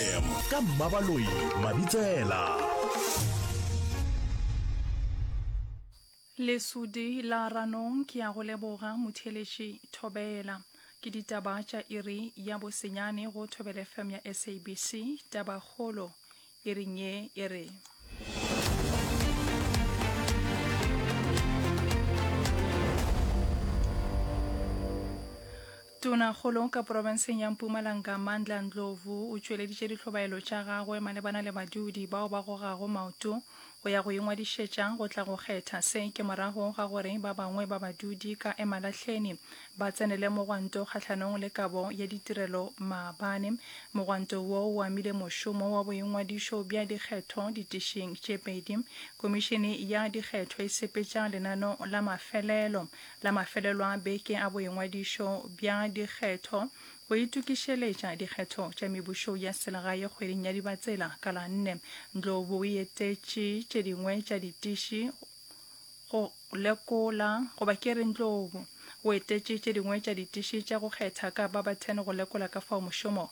fm ka mmabaloi mabitsela lesudi la ranong ke ya go leboga motheeletši thobela ke ditaba tša iri ya bosenyane go thobela fm ya sabc tabakgolo iring ye e re Tonakgolo ka porofenseng ya Mpumalanga Mandla Ndlovu o tšweleditše dihlobaelo tša gagwe malebana le badudi bao ba gogago maoto go ya go ingwadišetša go tla go kgetha. Se ke morago ga gore ba bangwe ba badudi ka Emalahleni ba tsenele mogwanto kgahlanong le kabo ya ditirelo maabane. Mogwanto wo o amile mošomo wa boingwadišo bja dikgetho ditišing tše pedi. Komišene ya dikgetho e sepetša lenano la mafelelo La mafelelo a beke a boingwadišo bja dikgetho go itokišeletša dikgetho tša mebušo ya selegae kgweding ya Dibatsela ka la nne, Ndlovu o etetše tše dingwe tša ditiši go lekola, goba ke re Ndlovu o etetše tše dingwe tja ditiši tša go kgetha ka Barberton go lekola ka fao mošomo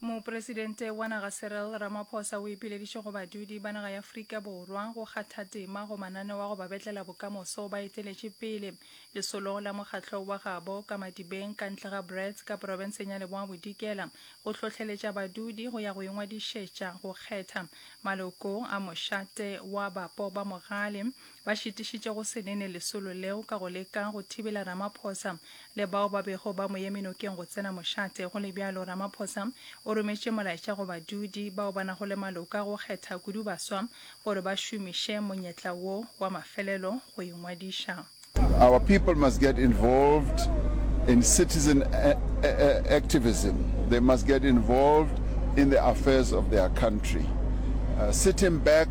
Mopresidente wa naga Cyril Ramaphosa o ipileditše go badudi ba naga ya Afrika Borwa go kgatha tema go mananeo a go ba betlela bokamoso ba eteletše pele lesolong la mokgatlo wa gabo ka Madibeng ka ntle ga Brits ka porofenseng ya Leboa Bodikela go hlohleletša badudi go ya go ingwadišetša go kgetha maloko a mošate wa bapo ba mogale Ba šitišitše go se nene lesolo leo ka go leka go thibela Ramaphosa le bao ba bego ba mo eme nokeng go tsena mošate. Go le bjalo, Ramaphosa o rometše molaetša go badudi bao ba nago le maloko a go kgetha kudu baswa gore ba šomiše monyetla wo wa mafelelo go ingwadiša. Our people must get involved in citizen activism, they must get involved in the affairs of their country. Sitting back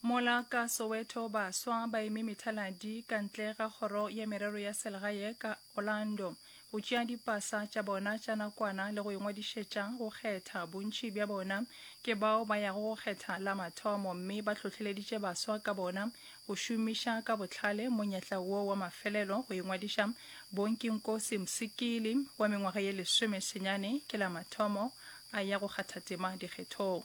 Mola ka Soweto baswa ba eme methaladi ka ntle ga kgoro ya merero ya selegae ka Orlando go tšea dipasa tša bona tša nakwana le go ingwadišetša go kgetha. Bontši bja bona ke bao ba yago go kgetha la mathomo mme ba hlohleleditše baswa ka bona go šomiša ka bohlale monyetla wo wa mafelelo go ingwadiša. Bonkinkosi Msikili wa mengwaga ye lesome senyane ke la mathomo a ya go kgatha tema dikgethong.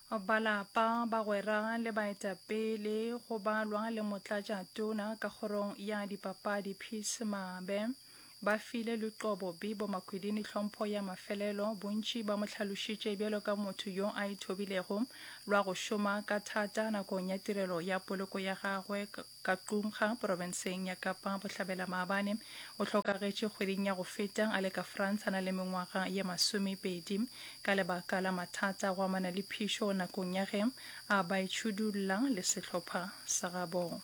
Ba lapa, bagwera le baetapele go balwa le motlatša tona ka kgorong ya dipapadi Peace Mabe ba file Luqobo Bibo Makwidini tlhompho ya mafelelo. Bontši ba mo hlalošitše bjalo ka motho yo a ithobilego lwa go šoma ka thata nakong ya tirelo ya poloko ya gagwe. ka Qumga, porofenseng ya Kapa Bohlabela Maabane. O hlokagetše kgweding ya go feta a le ka France a na le mengwaga ye masomepedi ka lebaka la mathata a go amana le phišo nakong ya ge a ba itšhudulla le sehlopha sa gabo.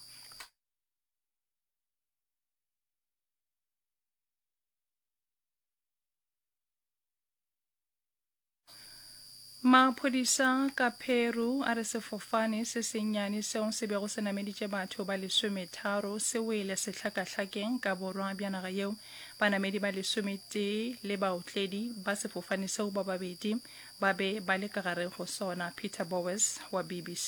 Maphodisa ka Peru a re sefofane se sennyane seo se bego se nameditše batho ba lesometharo se wele sehlakahlakeng ka borwa bja naga yeo. Banamedi ba lesometee le baotledi ba sefofane seo ba babedi ba be ba le ka gare go sona. Peter Bowes wa BBC.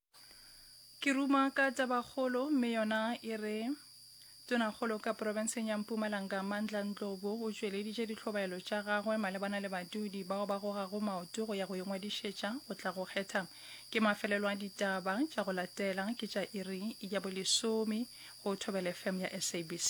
Ke ruma ka tabakgolo mme yona e re Tonakgolo ka porofenseng ya Mpumalanga Mandla Ndlovu o tšweleditše ditlhobaelo tša gagwe malebana le badudi bao ba gogago maoto go ya go ingwadišetša go tla go kgetha. Ke mafelelo a ditaba tša go latela ke tša iri ya bolesome go Thobela FM ya SABC.